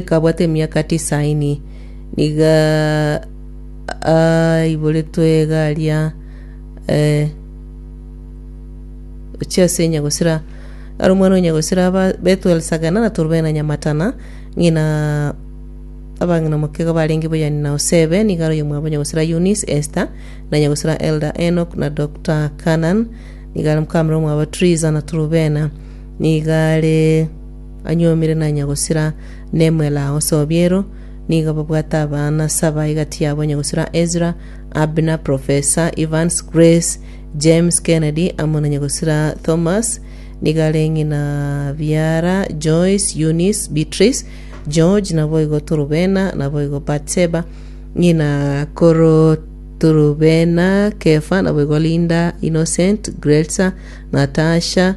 Kabwate emiaka tisaini, nigo aiboretwe iga aria eh, ochia ase Nyagosira. Aro omwana o Nyagosira aba Bethuel Sagana na Turubena Nyamatana, ng'ina abang'ina omokego barenge boyani na Osebe, nigo aro oyomwabo Nyagosira Eunice, Esther, na Nyagosira Elder Enoch na Dr. Canan, nigo are mokamera omwabo Triza na Turubena, nigo are anyuomire nanya gosira Nemuel agho Sobiero, nigo babwate abana saba egati yabo onye gosira Ezra, Abner, Professor, Evans, Grace, James, Kennedy, amo nonye gosira Thomas, nigo are ng'ina biara Joyce, Eunice, Beatrice, George, naboigo Turubena, naboigo Batseba, ng'ina koro Turubena, Kefa, naboigo Linda, Innocent, Grelsa, Natasha,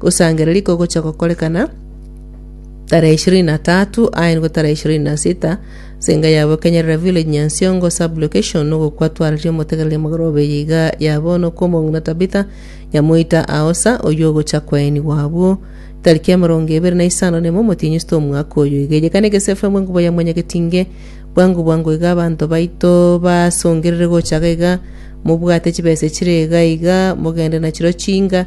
Gosangereria kogocha gokorekana, tarehe ishirini na tatu aenigwe tarehe ishirini na sita ase enka yabo Kenyerera Village Nyansiongo Sub Location nogokwa twarire omotegereria magoro obeyo iga ya bono kw'omong'ina Tabitha Nyamoita Aosa oyio ogocha kwaenigwa abwo tariki emerongo ebere na isano nemo omotienyi isita omwaka oyo iga eye kana egese FM enkuba ya mwanyagetinge bwango bwango iga abanto baito basongerere gocha iga iga mobwate chibesa chire iga iga mogende nachiro chinga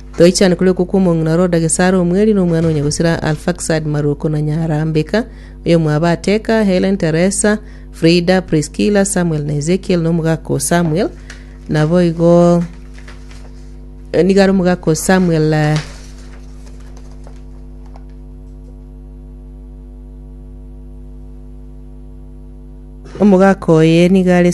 Toichane kore okwo kw'omong'ina ore o Dagesara omweri na omwana o nyagosira Arfaksad Maruoko na nyara Mbeka, oyomwabo Ateka, Helen, Teresa, Frida, Priskila, Samuel na Ezekiel na omogaka o Samuel. Naboigo eh, nigo are omogaka o Samuel eh, omogaka oye nigo are Samuel